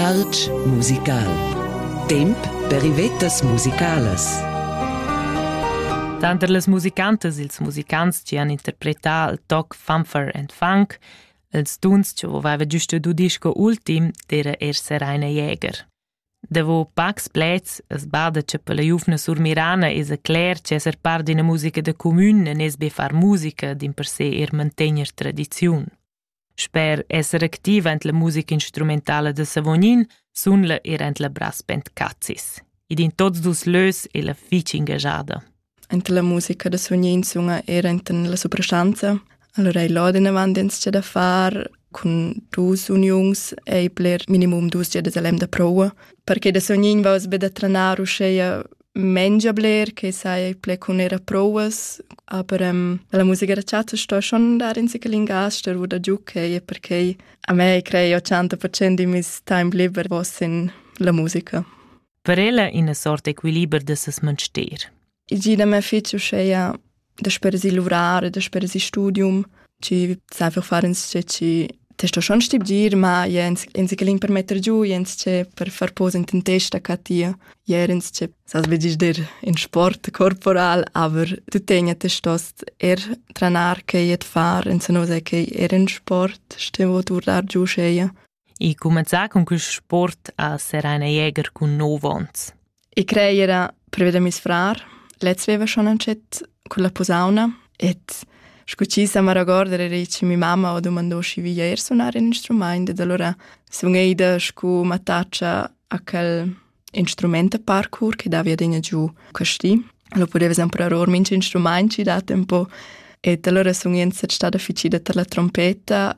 Artg musical. Temp per ivettas musicalas. Tanter las musicantas ils musicants chi han interpretà il toc Fanfare and Funk, ils duns chi aveva giusto du disco ultim, d'era er Seraina Jäger. Davo pacs pleds es bada cha per la giuvna surmirana esa cler chi esser part d'ina musica da cumün e nes be far musica dimpersè er mantegner tradiziun. Sper esser activa en la musica instrumentala da Savognin sunla er en la brass band Cazis. Ed in tots dus lös è la fitg engagada. Ent la musica da Savognin sunga er enten la soprastanza. Allora ei laden avant ins da far cun dus uniuns ei bler minimum dus giadas a lem da proua perché da Sognin va be da tranar uscheia mengia bler che sai ple cun era prouas, aber ähm, la musica da chatta sto schon dar in sichel in gas der wo da giucche e perché a me crei 80% di mis time liber was in la musica. Per ella ina sorta equiliber de ses menster. I gida me fece uscheia dasper si luvrar, dasper si studium, ci sai einfach fare insce ci testo schon stibgir, ma jens ins che ling per metter giù, jens che per far pose in testa ca tia, jerens che sas begis der in sport corporal, aber du tegna te stost er tranar che jet far, in se no sei che er in sport, stevo turlar giù scheia. e cumanzà cun quist sport a sereina jäger cun nov ons. I crei era previa da mis frar. Lez veva schon antschet con la posauna et sco ci sa maragorder era che mi mamma ho domandò schi via er sunar in instrument ed allora sun eida sco mattaccia a quel instrument a parkour che davia degna giù questi lo podeva sempre aror minch instrument ci dat un po e allora sun ien stat stada ficida per la trompeta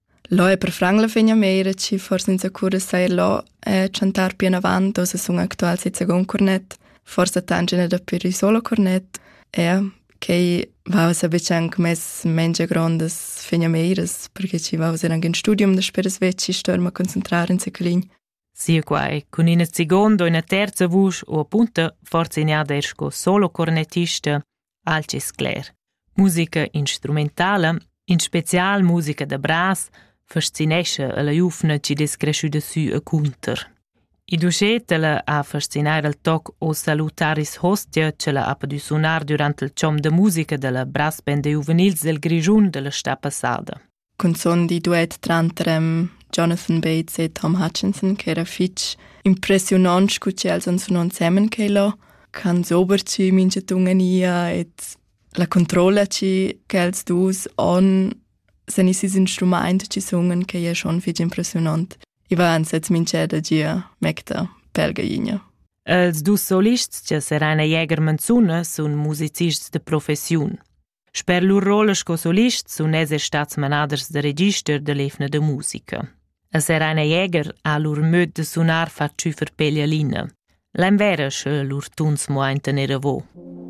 Lo è per franc la fegna meira chi forsa inzacura seir lo e chantar pianavant oz sun actual seis second cornet, forsa tangina dapi ün solo cornet. Eau, quai vausa be anc mess mengia grondas fegnameiras, perche chi vausa anc ün studium dasper as vecchi stuer ma concentrar in seclin. Sinquai cun ina seguonda o ina terza vusch u apunta forzignada er sco solo cornettista, alch es cler. Musica instrumentala, in special musica da bras, fascinescha la giuvna chi dess creschüda sü e cunter. Il duschetela ha fascinar al toc o salutaris hostia che la ha podü sunar durant il chom da musica da la brass band juvenils del Grischun della sta passada. cunzun di duet tranter em Jonathan Bates e Tom Hutchinson che era fitg impressiunant scu che els han sunà ensemen che lo can sober ci mincha tungania et la controlla ci che els dus on sen isis instrumaint ci sungen che è schon fitg impressionant. I va ansets mincha da gia mecta pelgainia. Els dus solists che seran e Jäger Manzuna sun musicists de professiun. Sper lur rolla sco solist sun els er stats manaders da register da l'evna da musica. E Serena Jäger ha lur möd da sunar fat tschüfer peglialina. L'an vera sche lur tuns mo ein tener avo.